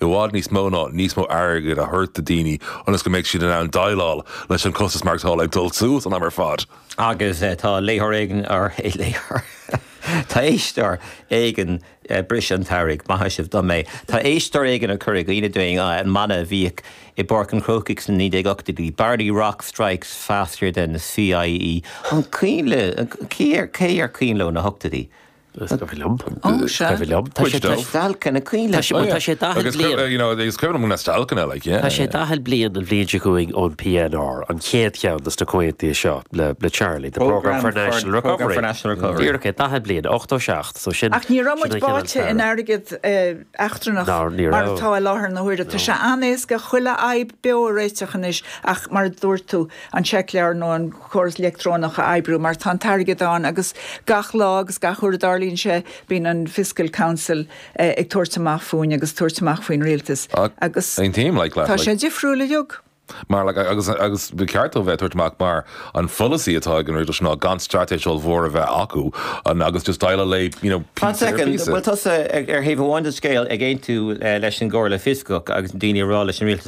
i bhfad níos mó ná níos mó airgid a thabhairt do dhaoine ionas go mbeidh siad in ann déileáil leis an costas maireachtála ag dul suas an am ar fad. Agus tá léitheoir éigin tar éis, léitheoir? tá éisteoir éigin tar éis, bris an tsamhraidh, maithfidh sibh dom é, tá éisteoir éigin tar éis cur i gcuimhne dúinn an mana a bhíodh i bPáirc an Chrócaigh sna 1980idí, Barney Rock Strikes Faster Than the CIE. An cuimhin libh, cé ar cuimhin leo na hochtóidí? Is cuimhin liom. Is cuimhin liom. Tá sé deacair a chreidiúint. Tá sé buan. Tá sé daichead bliain. Agus, you know, is cuimhin liom go mbeadh dealcain like, yeah. Tá sé daichead bliain an bhliain seo chugainn ón PNR, an chéad cheann de sna comhaontuithe seo le Charlie, the Programme for National Recovery. Programme for National Recovery. Díreach é, daichead bliain, 87, so sin. Ach ní raibh muid báite in airgead eachtrannach. Ná, ní raibh. Mar atá i láthair na huaire. Tá sé an-éasca chuile fhadhb beo a réiteach anois, ach mar a dúirt tú, an seicleabhar nó an córas leictreonach a oibriú mar tá an t-airgead ann agus gach lá agus gach uair a dtarlaíonn sé bíonn an Fiscal Council ag tabhairt amach fúinn agus tabhairt amach faoin Rialtas agus Same team like last tá sé difriúil beagán. Mar like agus agus ba cheart dóibh bheith ag tabhairt amach mar an pholasaí atá ag an Rialtas ná gan straitéis ollmhór a bheith acu an agus just deal away you know Fan second, an bhfuil tusa ar thaobh amháin den scéal ag aontú leis an gComhairle Fioscach agus daoine a rá leis an Rialtas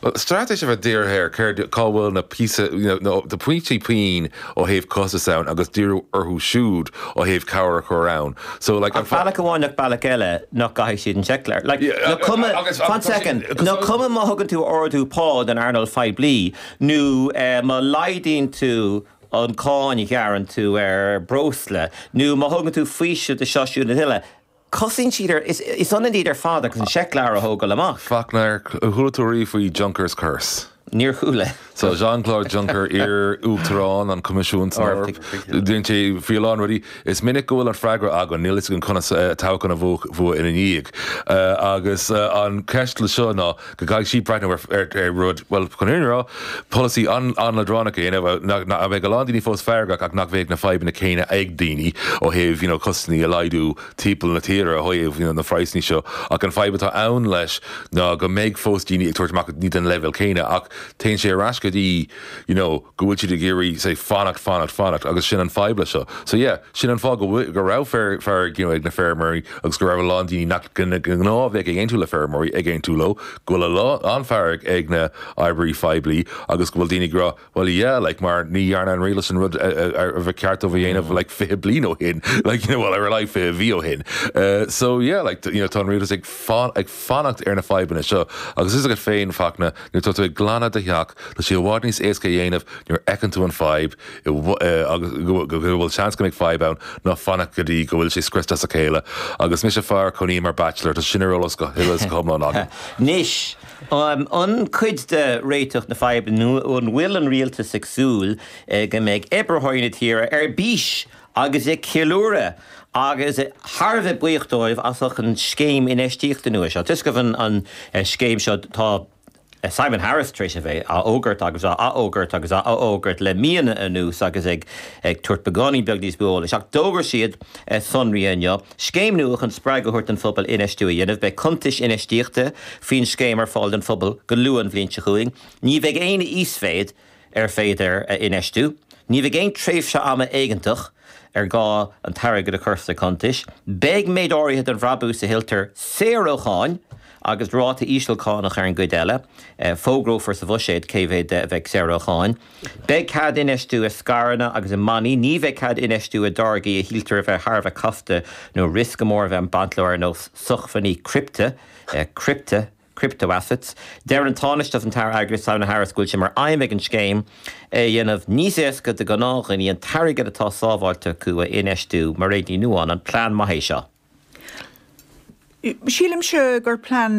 Bhuel, straitéis a bheith dírithe ar céard, cá bhfuil na píosa, you know, na, na pointí pian ó thaobh costas ann agus díriú orthu siúd ó thaobh cabhair a chur ann. So, like, an Ach fa- bealach amháin nach bealach eile nach gcaithfidh siad an seicleabhar. Like, Yeah, nó a- cuma, a- agus- fan agus- second, agus- nó cuma má thugann tú ordú pá don earnáil phoiblí nó eh, má laghdaíonn tú an cáin a ghearann tú ar breosla nó má thugann tú faoiseamh do seo, siúd nó uile, Cosnaíonn siad ar fad, is ionann iad ar fad agus an seicleabhar a thógáil amach. Fachtna, ar chuala tú riamh faoi Juncker's Curse? Níor chuala. So Jean-Claude Juncker, iar-uachtarán an Choimisiúin san Eoraip, dhein sé, faoi a lán rudaí, is minic go bhfuil an freagra againn, níl a fhios againn conas toghchán a bhuachan ina ndiaidh. Agus an cheist le seo ná, Go gcaithfidh siad breathnú ar rud, bhuel, chun an fhírinne a rá, polasaí an-leadránach a dhéanamh, nach mbeidh a lán daoine fós feargach ach nach mbeidh na fadhbanna céanna ag daoine ó thaobh, you know, costais a laghdú timpeall na tíre ó thaobh, you know, na phraghsanna seo ach an fadhb atá ann leis ná go mbeidh fós daoine ag tabhairt amach ní den leibhéal céanna ach téann sé ar ais go dtí, you know. go bhfuil siad ag iarraidh say fanacht, fanacht, fanacht agus sin an fadhb le seo. So yeah, sin an fáth go bhfuil, go raibh fear, fearg you know ag na feirmeoirí agus go raibh a lán daoine nach go gnáth a bheadh ag aontú le feirmeoirí ag aontú leo, go bhfuil a lán, an-fhearg ag na oibreoirí phoiblí agus go bhfuil daoine ag rá well yeah like mar ní dhearna an rialtas an rud ba cheart dóibh a dhéanamh like fiche bliain ó shin like you know well ar a laghad fiche mhí ó shin. So yeah like you know tá an rialtas ag fanacht, ag fanacht ar na fadhbanna seo agus fhios agat féin, Fachtna, nuair atá tú ag glanadh do theach, tá sé i bhfad níos éasca a dhéanamh nuair a fheiceann tú an fadhb agus go bhfuil seans go mbeidh fadhb ann ná fanacht go dtí go bhfuil sé scriosta as a chéile agus mise fear a chónaíonn mar bachelor, tá sin ar eolas go huile is go hiomlán agam. Anois, an cuid de réiteach na fadhbanna nó an bhfuil an rialtas ag súil go mbeidh oibritheoirí na tíre ar bís agus ag ceiliúradh agus thar a bheith buíoch dóibh as ucht an scéim infheistíochta nua seo. Toisc go bhfuil an scéim seo, tá Simon Harris tar éis a bheith á fhógairt agus á athfhógairt agus á athfhógairt le míonna anuas agus ag tabhairt beagáinín beag níos mó eolais, ach d'fhógair siad sonraí inniu, scéim nua chun spreagadh a thabhairt don phobal infheistiú a dhéanamh. Beidh cuntais infheistíochta faoin scéim ar fáil don phobal go luath an bhliain seo chugainn. Ní bheidh aon íosmhéid. ar féidir a infheistiú. Ní bheidh aon tréimhse ama éigeantach ar gá an t-airgead a chur sna cuntais. Beidh méid áirithe den bhrabús a thuilltear saor ó cháin agus ráta íseal cánach ar an gcuid eile. Fógrófar sa bhuiséad cé mhéad de a bheidh saor ó cháin. Beidh cead infheistiú i scaireanna agus i mbannaí. Ní bheidh cead infheistiú i dtáirgí a shíltear a bheith thar a bheith casta nó riosca mór a bheith ag baint leo ar nós sochmhainní criptea. crypto-assets. Deir an Tánaiste agus an t-Aire Airgeadais Simon Harris go bhfuil sé mar aidhm ag an scéim é a dhéanamh níos éasca do ghnáth-dhaoine an t-airgead atá sábháilte acu a infheistiú. Mairéad Ní Nuadháin, An plean maith é seo? Sílimse gur plean